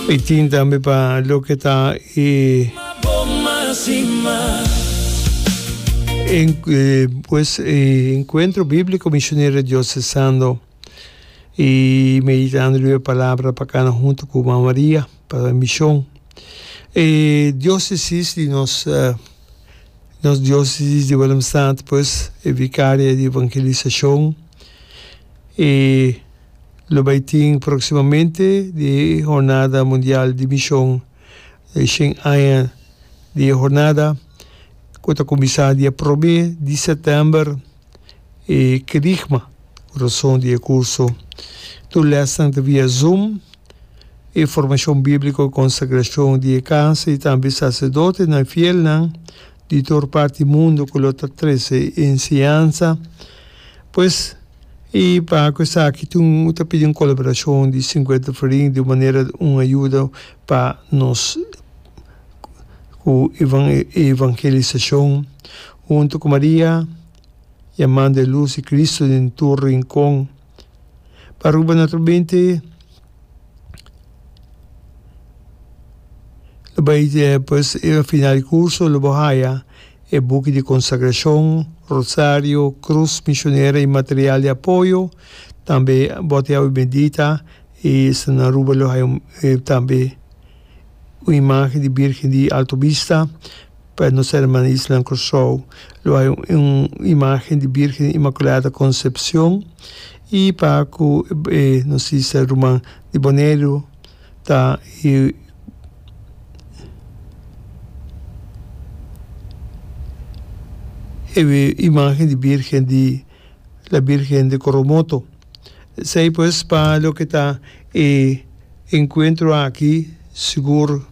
Y tin tambe pa loke ta e en, eh, pues e encuentro bíblico Misionero Diocesano y meditando lue palabra pa cana hunto cu Mama Maria pa mision. E diocesis di nos, eh, nos diocesis di Willemstad pues e Vicaria di Evangelisacion, e. Lo bai tin proximamente di Hornada Mundial di Mishon, e shen aña di e hornada ku ta kuminsá dia promé di sètèmber e kerigma ku rason di e kurso. Tur lèsnan ta via Zoom. E formashon bíbliko, konsagrashon di e kas i tambe saserdotenan fielnan di tur parti mundu ku lo ta trese enseñansa. Pues i pa ku esaki tin un ta pidi un kolaborashon di sinkuenta filiin di un manera un ayuda pa nos ku evangelisashon huntu ku Maria, Yaman de Lus i Kristu den tur rinkon. pa Aruba noto binti lo bai pues e final di kurso lo bo haya e buki di konsagrashon, rosario, krus mishonera i material di apoyo, tambe bòt di awa bendita i esnan na Aruba lo haya tambe un imagen di birgen di Alto Bista. Pa nos herman y isnan Curaçao lo hay un imagen di Virgen Inmaculada Concepcion y pa cu e nos sister ruman di Boneiru ta y e imagen di Virgen di. La Birgen di Coromoto. Esei pues pa loke ta e encuentro aki sigur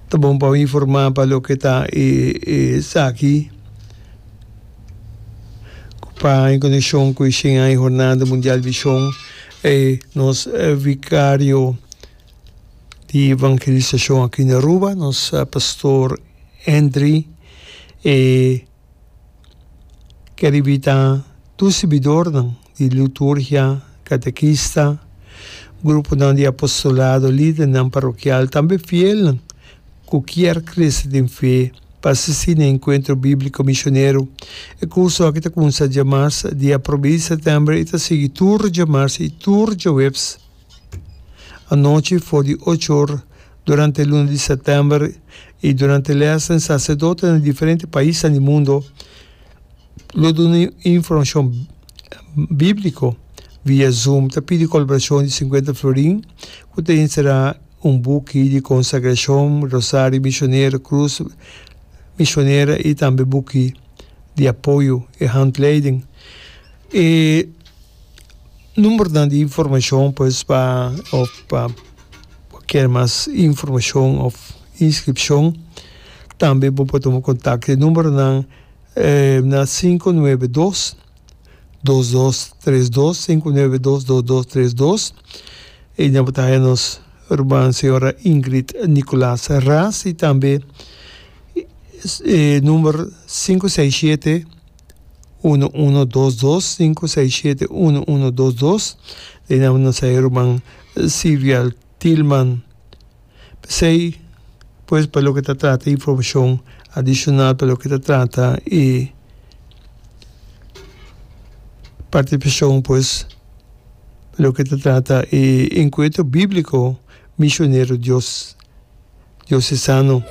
ta bon pa bo informa pa loke ta e esaki pa en coneccion cu e shen aña Hornada Mundial Vision e nos Vicario di Evangelisacion aki na Aruba nos Pastor Henry e keribita tur sirbidornan di liturgia, katekista, gruponan di apostolado, lidernan parokial, tambe fielnan ku kier krese den fe pa asistí na Enkuentro Bíbliko Misionero. E kurso aki ta kumsa dje mars, dia prob'é di sètèmber i ta sigui tur dje mars i tur dje webs. Anochi for di ocho or durante luna di sèptèmber i durante lèsnan saserdotenan di diferente paisnan di mundu lo duna un informashon bíbliko via Zoom. Ta pidi kolaborashon di sinkuenta florin ku ta enserá un buki di konsagrashon, rosario mishonero, krus mishonera i tambe buki di apoyo, e handleiding. E. Numbernan di informashon pues pa òf pa kier mas informashon òf inskripshon. Tambe bo por tuma kontak di numbernan na sinku nuebe dos, dos dos tres dos, sinku nuebe dos, dos dos tres dos. I nan bo ta haña nos ruman señora Ingrid Nicolaas Ras i tambe number sinku sei shete. uno uno dos dos sinku sei shete uno uno dos dos den nan nan sa e ruman Sirial Tilman p'esei pues pa loke ta trata informashon adishonal pa loke ta trata e partisipashon pues loke ta trata e enkuentro bibliko Mishonero Dios. diosesano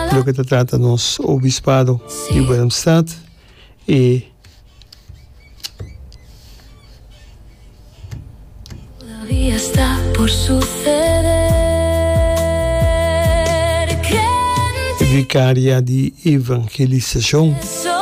di loke ta trata nos obispado di Willemstad y vicaria di evangelisacion.